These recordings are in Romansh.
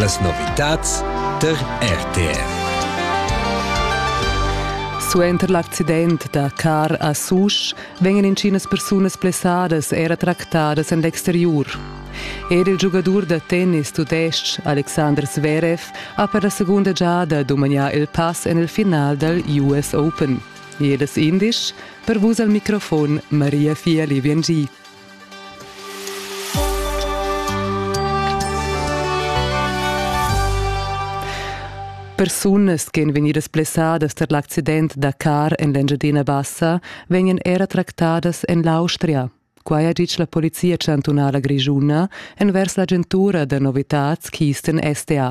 Las novitads tar RTF. Suenter l'accident da car a Susch vegnan intginas persunas blessadas era tractadas en l'exteriur. Er il giugadur da tennis tudestg Alexander Zverev ha per la segunda giada dumagnà il pass en il final dal US Open. Jedes indisch, per vus al microfon Maria Fieli-Biengi. Persunas che èn vegnidas blessadas tar l'accident da car en l'Engiadina Bassa vegnan era tractadas en l'Austria. Quai ha ditg la Polizia chantunala grischuna envers l'agentura da novitads Kisten SDA.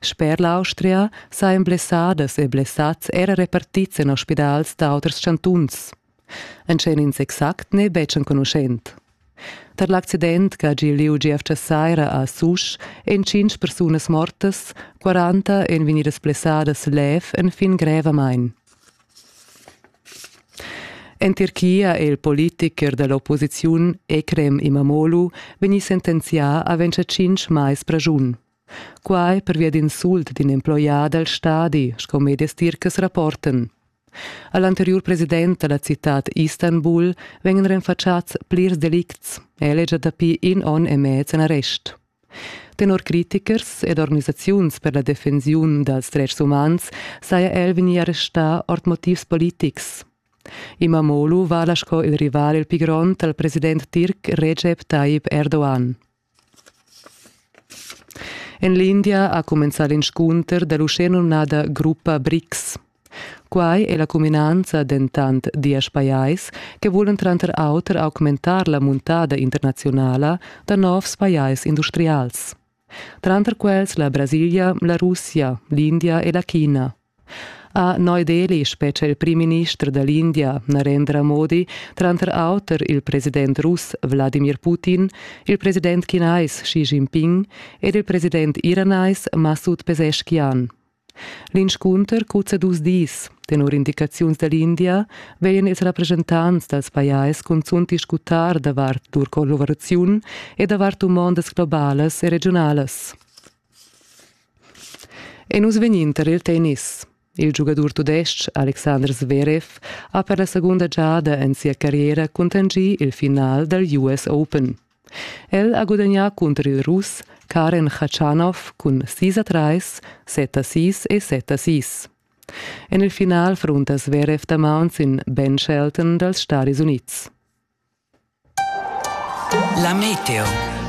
Sper l'Austria sajan blessadas e blessads era repartids en ospidals da auters chantuns. Entschet ins exact n'è betg enconuschent. Tar l'accident che ha gì lieu gievgia saira a Susch èn tschintg persunas mortas, 40 èn vegnidas blessadas lev enfin grevamain. En Tirchia è il politicher da l'opposiziun Ekrem Imamoglu vegnì sentenzià a vencer tschintg mais praschun. Quai pervia d'insult d'in emploià dal stadi, sco medias tircas rapportan. A l'anteriur president da la citad Istanbul vegnan renfatschads plirs delicts. El è gia dapi in onn e mez en arrest. Tenor critichers ed organisaziuns per la defensiun dals dretgs umans saja el vegnì arrestà ord motivs politics. Imamoglu vala sco il rival il pli grond al president tirc Recep Tayyip Erdogan. En l'India ha cumenzà l'inscunter da l'uschenumnada gruppa BRICS. Quai è la cuminanza dentant diesch pajais che vulan tranter auter augmentar la muntada internaziunala da novs pajais industrials. Tranter quels la Brasilia, la Russia, l'India e la China. Ha Neu Delhi spetga il primminister da l'India Narendra Modi, tranter auter il president russ Wladimir Putin, il president chinais Xi Jinping ed il president iranais Masud Pezeshkian. L'inscunter cuzza dus dis. Tenor indicaziuns da l'India vegnan ils rappreschentants dals pajais cunzunt discutar davart lur collaboraziun e davart dumondas globalas e regiunalas. E nus vegnin tar il tennis. Il giugadur tudestg Alexander Zverev ha per la segunda giada en sia carriera cuntanschì il final dal US Open. El ha gudagnà cunter il Russ Karen Khachanov cun sis a trais, set a sis e set a sis. En il final frunta Zverev damaun sin Ben Shelton dals Stadis Unids. La meteo.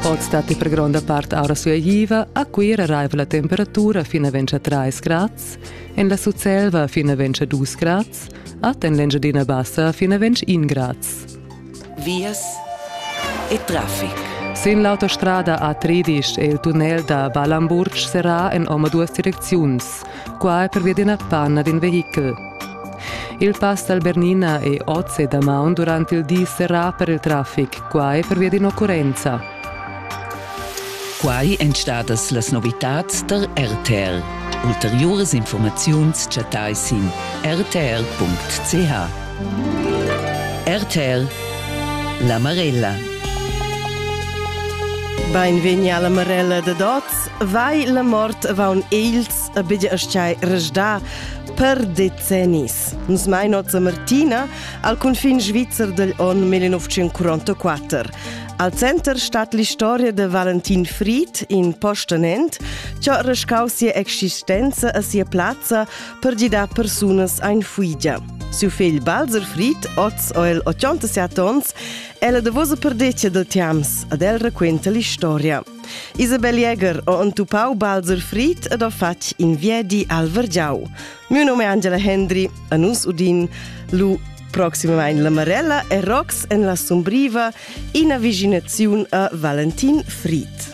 Oz dat per gronda part aura sueiva, a Cuira raiva la temperatura fina ventscha 3 grads, en la Sutselva fina ventscha 2 grads, at en l'Engiadina Bassa fina vensch 1 grads. Vias e traffic. Sin l'autostrada A3 è il tunnel da Balamburg serrà en oma duas direcziuns, Qua pervia d'ina panna d'in vehichel. Il pass dal Bernina è oz e damaun durant il di serrà per il traffic, quai pervia d'in'occurrenza. Quai èn stadas las novitads tar RTL. Ulteriuras informaziuns chattai sin rtr.ch. RTL La Marella. Beinvegni alla Marella dad oz Vai la mort vaun ils a bidja asciai resdà per decennis. Nus mai nozza Martina al confin svizzer del on 1944. Al center stat l'istoria de Valentin Fried in Postenent, ciò rescau sia existenza a sia plazza per gidar persunas ein fuigia. Siu figl Balzer Fried, oz o el 87 ons, è la davosa perdeccia del Tiams, ad el raquenta l'istoria. Isabel Jäger ho entupau Balzer Fried ed ho fatg in viedi al Vergiau. Miu num è Angela Hendry e nus udin lu proximamein la Marella e Rox en la sumbriva, ina viginaziun a Valentin Fried.